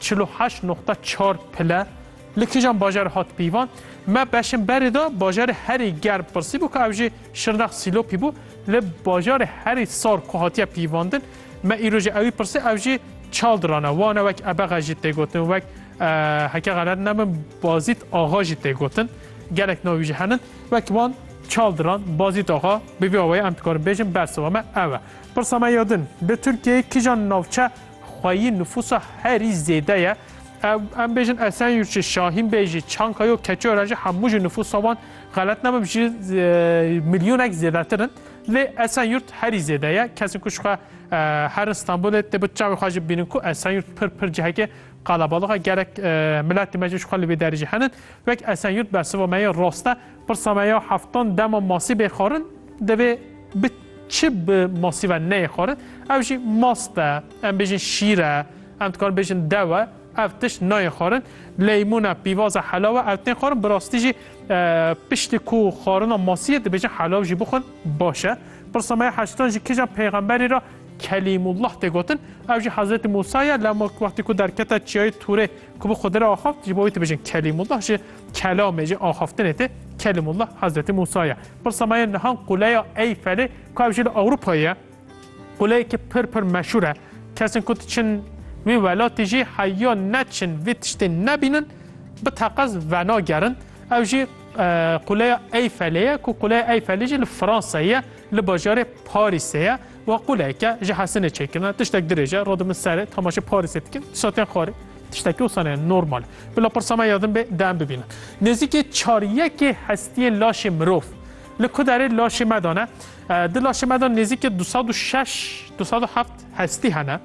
Çil û heşt noqta çar pile li kîjan bajarê hat pîvan? Me beşên berê de bajarê herî germ pirsî bû ku ev jî Şirnex Sîlopî bû. Li bajarê herî sar ku hatiye pîvandin me îro jî ewî pirsî ew jî Çaldiran e. Wan e wek Ebexe jî tê gotin wek heke xelet nebim Bazît Axa jî tê gotin. Gelek navî jî henin wek wan Çaldiran, Bazît Axa bi vî awayî em dikarin bêjin bersiva me ew e. Pirsa me ya din li Tirkiyeyê kîjan navçe Xweyî nifûsa herî zêde ye. Ew em bêjin Esenyurt jî, Şahîn Bey jî, Çanka yo, Keçiören jî hemû jî nifûsa wan xelet nebim ji milyonek zêdetir in. Lê Esenyurt herî zêde ye. Kesên ku ji xwe herin Stenbolê dê bi çavê xwe jî bibînin ku Esenyurt pir pir cihekê qalabalix e. Gerek miletê me jî ji xwe li vê derê jî henin. Wek Esenyurt bersiva me yê rast e. Pirsa me ya heftan dema masî bê xwarin divê bi çi bi masî ve neyê xwarin? Ev jî mast e, em bêjin şîr e, em dikarin bêjin dew e, ev tişt nayê xwarin. Leymûn e, pîvaz e, helaw e, ew tên xwarin. Bi rastî jî piştî ku xwarina masiyê dibêjin helaw jî bixwin baş e. Pirsa me ya heştan jî kîjan peyxemberî ra Kelîmullah tê gotin? Ew jî Hezretî Mûsa ye, lewma wextî ku derkete çiyayê Tûrê ku bi Xidiri axaft ji bo wî dibêjin Kelîmullah jî Kelamê ji axaftinê tê Kelimullah Hezretî Mûsa ye. Pirsa me ye niha Quleya Eyfelê ku ev jî li Ewropayê ye. Quleyekî pir pir meşûr e. Kesên ku diçin wî welatî jî heya neçin vê tiştê nebînin bi teqez venagerin. Ew jî Quleya Eyfelê ye ku Quleya Eyfelê jî li Fransayê ye li bajarê Parîsê ye û quleyeke ji hesinê çêkirine. Tiştek dirêj e. Rod min serê temaşê Parîsê dikim. Satiyan xwarê. Tiştekî wisa ne normal e. Bila pirsa me ya din be de em bibînin. Nêzîkê çar yekê hestiyên laşê mirov li ku derê laşê me de ne. Di laşê me de nêzîkê du sed û şeş du sed û heft hestî hene.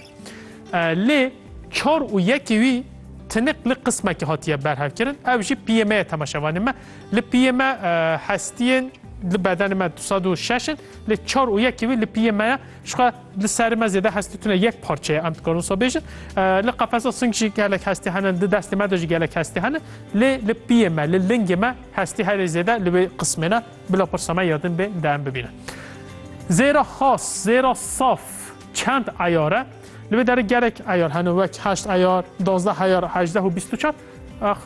Lê çar û yekê wî tinik li qismekê hatiye berhevkirin. Ev jî piyê me ye temeşevanê me. Li piyê me hestiyên li bedenê me du sed û şeş in. Lê çar û yekê wî li piyê me ye jixwe li serê me zêde hestî tune yek parçe ye em dikarin wisa bêjin. Li qefesa sing jî gelek hestî hene di destê me de jî gelek hestî hene lê li piyê me li lingê me hestî herê zêde li wê qismê ne bila pirsa me ya din bê de em bibînin. Zêra xas, zêra saf çend eyar e? Li wê derê gelek eyar hene wek heşt eyar, dozdeh eyar, hejdeh û bîst û çar.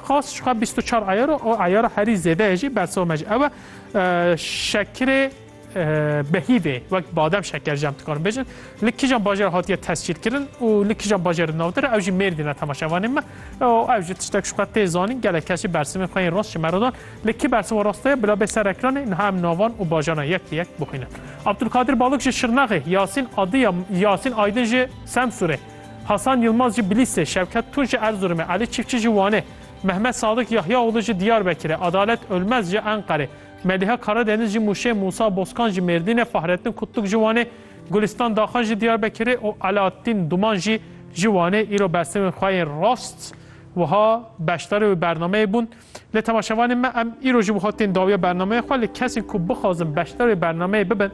Xas jixwe bîst û çar eyar û eyara herî zêde ye jî bersiva me jî ew e. Şekirê behîvê wek badem şeker jam dikarin bêjin li kijan bajer hatiye tescîl kirin û li kijan bajer navdir ew jî mêrdî ne temaşevanê me ew jî tiştek şuqe tê zanîn gelek kesî bersimê xwe yên rast ji merodan li kî bersima rast ye bila bê ser ekranê niha em navan û bajana yek li yek bixwînin Abdulkadir Balok ji Şirnexê Yasîn Adiya Yasîn Aydin ji Semsûrê Hasan Yilmaz ji Bilîsê Şevket Tun ji Erzurumê Elî Çiftçi ji Wanê Mehmet Sadık Yahyaoğlu ji Diyarbekirê, Adalet Ölmez ji Enqerê, Meliha Karadeniz ji Muşê, Musa Bozkan ji Mêrdînê, Fahrettin Kutluk ji Wanê, Gulistan Daxan ji Diyarbekirê û Alaattîn Duman jî ji Wanê îro bersiv xwe yên rast wiha beşdarê wê bernameyê bûn. Lê temaşevanên me em îro ji wiha tên dawiya bernameyê xwe lê kesên ku bixwazin beşdar wê bernameyê bibin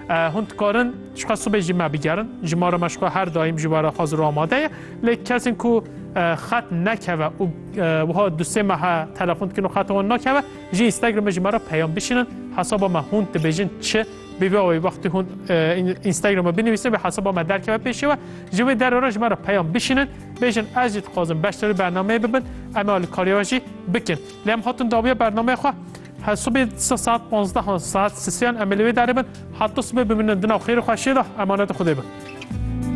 hûn dikarin jixwe sibê jî me bigerin. Ji ma re me jixwe her daîm ji we re hazir û amade ye. Lê kesên ku xet nekeve û wiha du sê mehe telefon dikin û xeta wan nakeve ji Instagramê ji me re peyam bişînin hesaba me hûn dibêjin çi bîbe wê wextî hûn Instagramê binivîsin vê hesaba me derkeve pêşê we ji vê derê re ji me re peyam bişînin bêjin ez jî dixwazim beşdarî bernameyê bibin em ê alîkarî we jî bikin lê em hatin dawiya bernameya xwe Hesubê saat 15 saat sisiyan em ê li wê derê bin heta sibê bimînin di nav xêrê xwe şêda emanetê Xwedê bin.